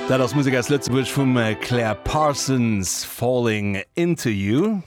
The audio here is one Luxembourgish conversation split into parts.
Dat ass Musek aus Lëtzebuerg vum Claire Parsons, Falling into you.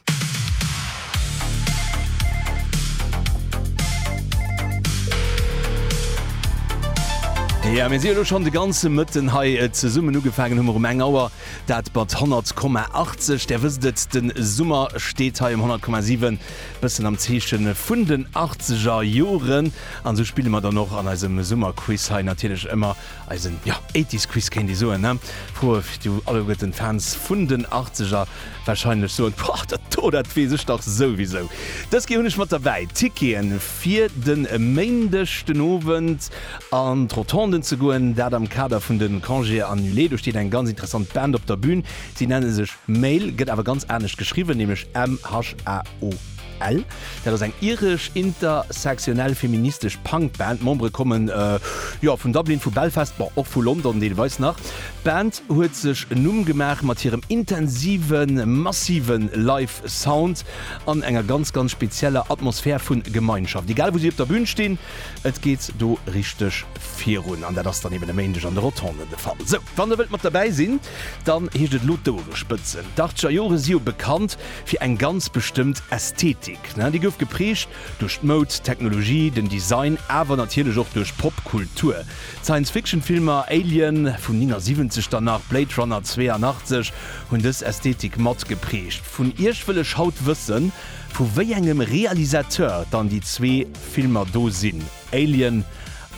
Ja mir si lo schon de ganze Mëtten hei äh, zesummen ugefagen hummer um eng Auer dat mat 10,80 der wëst et den Summer steet hei um 10,7 bëssen am Zeechen vun den 80er Joren. An esou spille mer dann och an eisem Summerquiz hei natierlech ëmmer eisen, jo, Eighties Quiz kéint ee soen, ne? Froe fir du alleguerten Fans vun den Achtzeger wahrscheinlech soen, Boah, dat do, dat weess ech dach souwisou. Dës Kéier hunn ech mat derbäi Tickete fir de Méindeg den Owend an d'Rotonde ze goen, dat am Kader vun de Congés annulés. Do steet eng ganz interessant Band op der Bühn. Si nenne sech Mail, gëtt awer ganz anescht geschriwwen, nämlech MHAO. Ell, dat ass eng iresch intersectionell feministesch Punk-Band. D'Membere komme jo vun Dublin, vu Belfast, bon och vu London deelweis nach. D'Band huet sech en Numm gemaach mat hirem intensiven, massive Live-Sound an enger ganz, ganz spezieller Atmosphär vu Gemeinschaft. Egal wou si op der Bün stinn, et geet do richteg virun. An dat ass dann eben e Méindeg an de Rotonden de Fall. Sou, wann der wëllt mat derbäi sinn, Dann heescht et elo d'Ouere spëtzen. D'Ardscher Jore si jo bekannt fir eng ganz bestëmmt Ästhetik. Déi gouf geprägt duerch d'Moud, d'Technologie, den Design, awer natierlech och duerch Popkultur. D'Science-Fiction-Filmer Alien vun 79 dann nach Blade Runner 82 hunn dës Ästhetik mat geprägt. Vun Iech wëll ech haut wëssen, vu wéi engem Realisateur dann déi zwee Filmer do sinn. Alien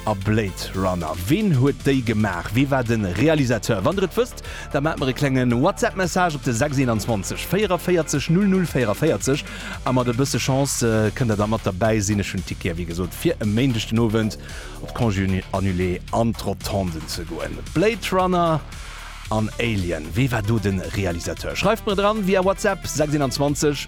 a Blade Runner, ween huet déi gemaach? Wee war de Realisateur? Wann der et wësst, da maacht mer e klenge Whatsapp Message op de 621 44 00 44 a mat e bësse Chance kënnt der da mat derbäi sinn. Ech hunn Tickete wéi gesot fir e Méindeg den Owend op d'Congé Annulé an d'Rotonden ze goen. Blade Runner an Alien, wee war do de Realisateur? Schreift mer dran via Whatsapp 621.